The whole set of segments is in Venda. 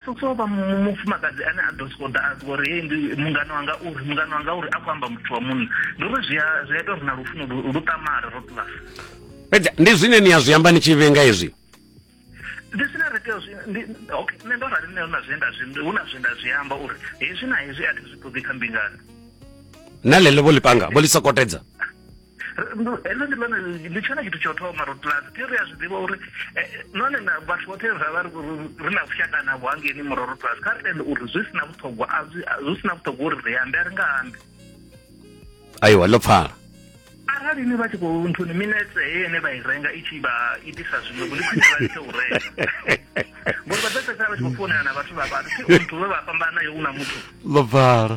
Soso vha mufumakadzi ane a ḓo sokou ḓa a zwi uri hei ndi mungano wanga uri mungano wanga uri a khou amba muthu wa munna ndi uri zwi a zwi a ita uri na lufuno lu ṱamare ro plus fhedza ndi zwine ni a zwi amba ni tshi vhenga hezwi ndi zwine ri tea zwi okay nṋe ndo rali nṋe hu na zwe nda zwi hu na zwe nda zwi amba uri hezwi na hezwi a thi zwi ṱoḓi kha mbingano na ḽeḽo vho ḽi panga vho ḽi sokotedza heḽo ndi ḽone ndi tshone tshithu tsho thoma ro tla ri ri a zwi ḓivha uri eh, none na vhathu vhoṱhe ra vha ri na vhushaka navho hangeni murwa ro tla kha ri tende uri zwi si na vhuṱhogwa zwi si na vhuṱhogwa uri ri ambe a ri nga ambi aiwa ḽo pfala arali ni vha tshi khou nthuni minetse heyo ine vha i renga i tshi vha itisa zwiṅwe ndi khwine vha litshe u renga ngori vha ḓo fhedzisela vha tshi khou founela na vhathu vha vhathu muthu we vha fhambana yo u na muthu ḽo pfala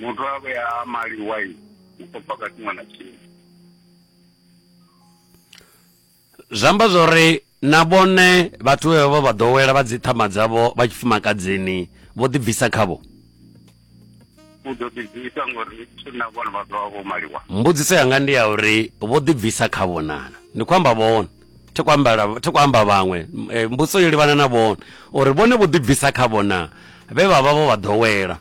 Muthu a vhe a mali waini u khou paka tshiṅwe na tshiṅwe. Zwi amba zwa uri na vhone vhathu vhe vha vha ḓowela vha dzi ṱhama dzavho vha tshifumakadzini vho ḓibvisa khavho u ḓo ḓibvisa ngori na vhone vha ḓo vha vho maliwa mbudziso yanga ndi ya uri vho ḓibvisa khavho nana ndi khou amba vhone thi khou amba thi khou amba vhaṅwe eh, mbudziso yo livhana na vhone uri vhone vho ḓibvisa khavho na vhe vha vha vho vha ḓowela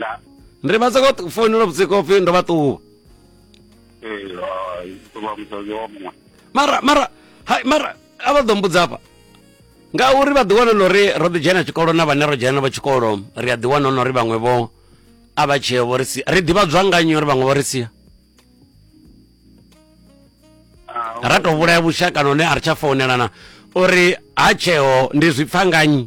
la ndi vha soko tu- founela vhusiku upfi ndo vha ṱuwa eh ah, to ba musadzi wa muṅwe mara mara hai mara a vha ḓo mbudza hafha ngauri vha ḓiwana na uri ro ḓi dzhena tshikolo na vhane ro dzhena navho tshikolo ri a ḓiwana na uri vhaṅwe vho a vha tshee vho ri sia ri ḓivhadzwa nga nnyi uri vhaṅwe vho ri sia Ah, ra tou vhulaya vhushaka none a ri tsha founelana uri ha tsheo ndi zwi pfa nga nnyi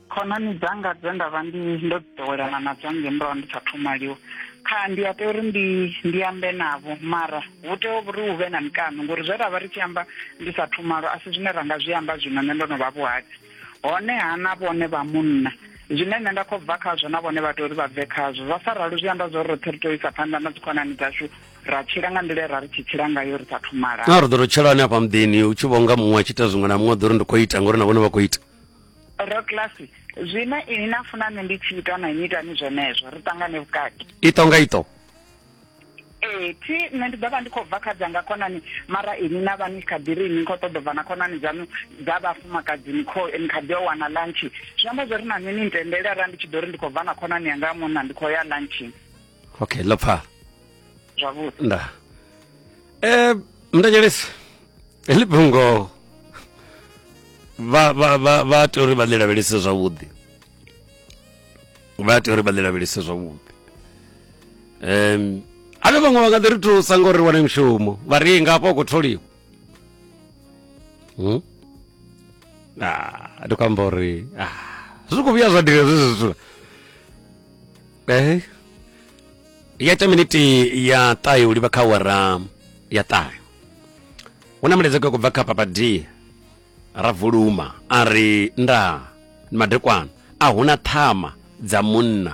khonani dzanga dze nda vha ndi ndo ḓowelana nadzo ngei murahu ndi sa thumaliwa kha ndi a tea uri ndi ndi ambe navho mara hu tea uri hu vhe na mikano ngori zwe ra vha ri tshi amba ndi sa thumalo a si zwine ra nga zwi amba zwino nṋe ndo no vha vhuhadzi honeha na vhone vha munna zwine nṋe nda khou bva khazwo na vhone vha tea uri vha bve khazwo zwa sa ralo zwi amba zwa uri roṱhe ri tea u isa phanḓa na dzikhonani dzashu ra tshila nga nḓila ra ri tshi tshila ngayo ri sa thumala na ri ḓo ri tshelani afha muḓini u tshi vhonga muṅwe a tshi ita zwiṅwe na muṅwe ḓo ri ndi khou ita ngori na vhone vha khou ita roklasi zwine ini na funa nṋe ndi tshi ita na inwi itani zwenezwo ri ṱangane vhukati ito nga ito ee thi nṋe ndi ḓo vha ndi khou bva kha dzanga khonani mara ini na vha ni kha ḓi ri ini khou ṱoḓa bva na khonani dzaṋu dza vhafumakadzi ni kho ni kha ḓi yo wana lunch zwi amba zwo ri na nṋe ni ntendele arali ndi tshi ḓo ri ndi khou bva na khonani yanga ya munna ndi khou ya lunching okay lo pfala Zwavhuḓi. nda eh mndanyelesi heḽi fhungo vha vha vha vha tea uri vha ḽi lavhelese zwavhuḓi vha tea uri vha ḽi lavhelese zwavhuḓi um ane vhaṅwe vha nga ḓi ri thusa ngo ri wane mushumo vha ri nga hafha u khou tholiwa Hmm? Ah, ndi khou amba uri ah, zwi khou vhuya zwa dira zwezwi zwithu eh ya ita miniti ya ṱahe u livha kha wara ya ṱahe hu na mulaedza kwe kubva kha papa d ra vuluma a ri nda ni madekwana a huna ṱhama dza munna